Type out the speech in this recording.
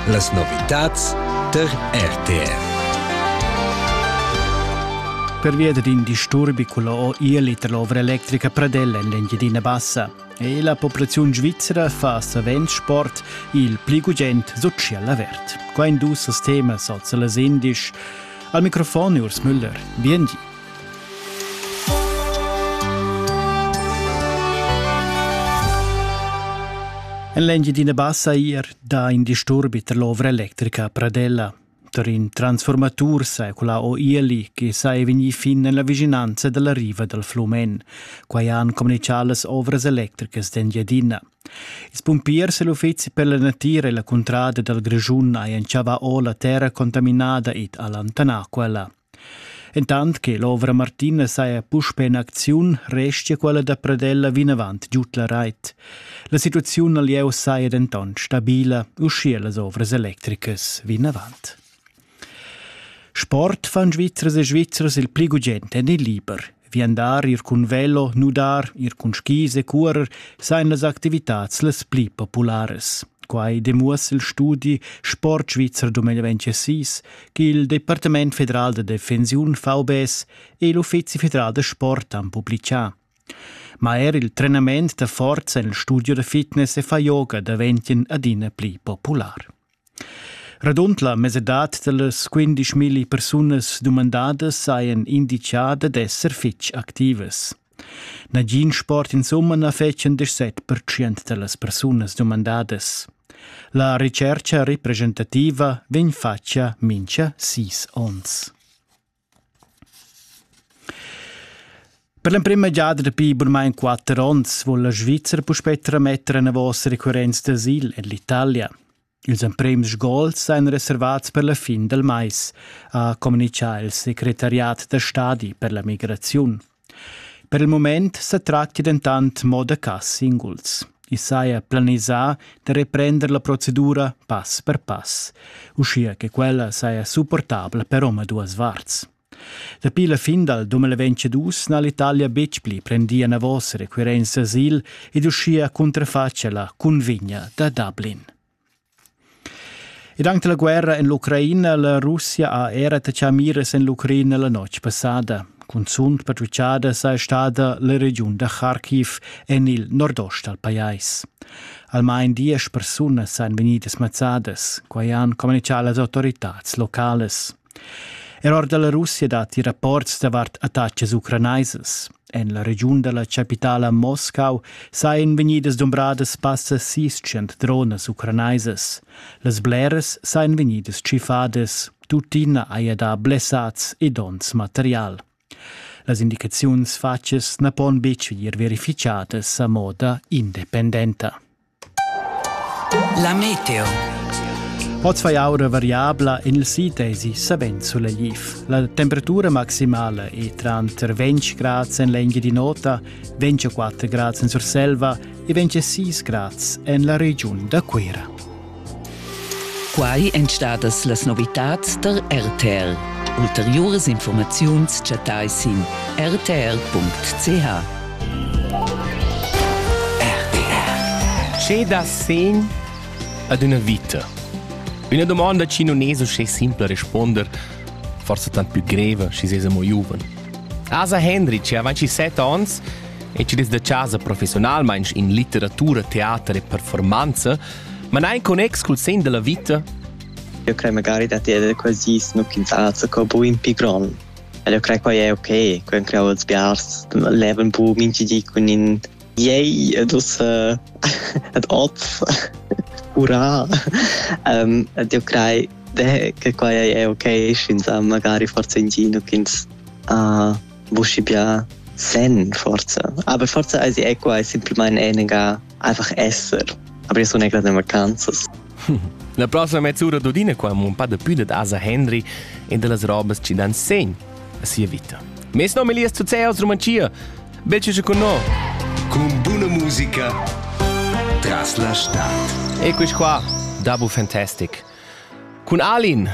Las novitads der RTR. Pervia d'in disturbi culla ILIT l'ovra electrica Pradella en l'Engiadina Bassa e la populaziun svizra fa savens sport il pli gugent social avert. Quai dus temas als las indisch. Al microfon Urs Müller. Bien di. En l'Engiadina Bassa eir dà in disturbi tar l'ovra electrica Pradella. Tar in transformatur secula o ieli che sa è vegnì fin en la vicinanza dalla riva dal Flumen. Quai han communichà las ovras electricas d'Engiadina. Ils pumpiers e l'uffizi per la natira e la cuntrada dal Grischun hajan chavà o la terra contaminada ed allontanà quella. Entant che l'ovra Martina saja puspè en acziun, restia quella da Pradella vinavant giud la rait. La situaziun al lieu saja dentant stabila, uschia las ovras electricas vinavant. Sport fan Svizzers e Svizzers il pli gugent en il liber. Viandar ir cun velo, nudar, ir cun skis e curer sajan las activitads las pli popularas. Quai demuossa il studi Sport Svizzer 2026 ch'il Departament federal da defensiun VBS e l'Uffizi federal da sport han publicà. Ma er il trenament da forza en il studio da fitness e fa yoga daventien adina pli popular. Radund la mesadad da las quindischmilli persunas dumandadas sajan inditgada d'esser fitg activas. Nagin sport insumma na fetschan set pertschient da las persunas dumandadas. La retschercha representativa vegn fatga mincha sis ons. Per l'emprema giada dapi burmain quatter onns vul la Svizra puspè trametter enavos recurrents d'asil en l'Italia. Ils emprems gols èn reservats per la fin dal mais, ha communitgà il secretariat da stadi per la migraziun. Per il mument sa tratga dentant mo da cas singuls. I saja planisà da reprender la procedura pass per pass, uschia che quella saja supportabla per omaduas varts. Dapi la fin dal 2022 n'ha l'Italia betg pli prendì enavos requirents asil ed uschia cunterfatg la cunvegna da Dublin. Ed anche la guerra en l'Ucraina la Russia ha era attachà miras en l'Ucraina la notg passada. Cunzunt patrucciada saja stada la regiun da Kharkiv en il nordost dal pajais. Almain diesch persunas sajan vegnidas mazzadas. Quai han communichà las autoritads locales. Er or da la Russia datti rapports davart attacas ucranaisas. En la regiun da la chapitala Moscau sajan vegnidas dumbradas passa sis cent dronas ucranaisas. Las bleras sajan vegnidas tschiffadas. Tuttina haja dà blessads e donns material. Las indicaziuns fatgas na pon betg vegnir verificadas a moda independenta. La meteo. Oz fai aura variabla en il sid esi savens sulegliv. La temperatura maximala è tranter 20 grads en l'engia di nota, 24 grads en Surselva e 26 grads en la regiun da Cuira. Quai èn stadas las novitads tar RTR. Ulteriuras informaziuns chattai sin rtr.ch. Che da sen ad una vita? Una domanda chi non es uschè simpla responder, forse tant più greva schi sesa mo giuven. Asa Henry c'è avanti 7 ans e ci des da casa professionalmain in litteratura, teater e performanza Ma n'ha in connex cul sen da la vita? Eu crei magari dad eder quasi snu quintats co bu in pi gron. Ed eu crei quai è ok, quai han creau els biars, levan bu minchi di cun in yay ed ussa ed op, hurra! um, ed eu crei che quai è ok, sch'ins ha magari forza in gino ch'ins ha buschi bia sen forza. Aber forza also è quai semplimain enega Einfach esser. Aber io sun egra de vacanzas. La prossima mezz'ura d'Udine qua un pa de più de Asa Henry e de las robas ci dan segn a sia vita. Mes nome Elias Zuzeos, Romancia. Becce con noi. Con buona musica tras la stad. E quis qua, Dabu Fantastic. Con Alin,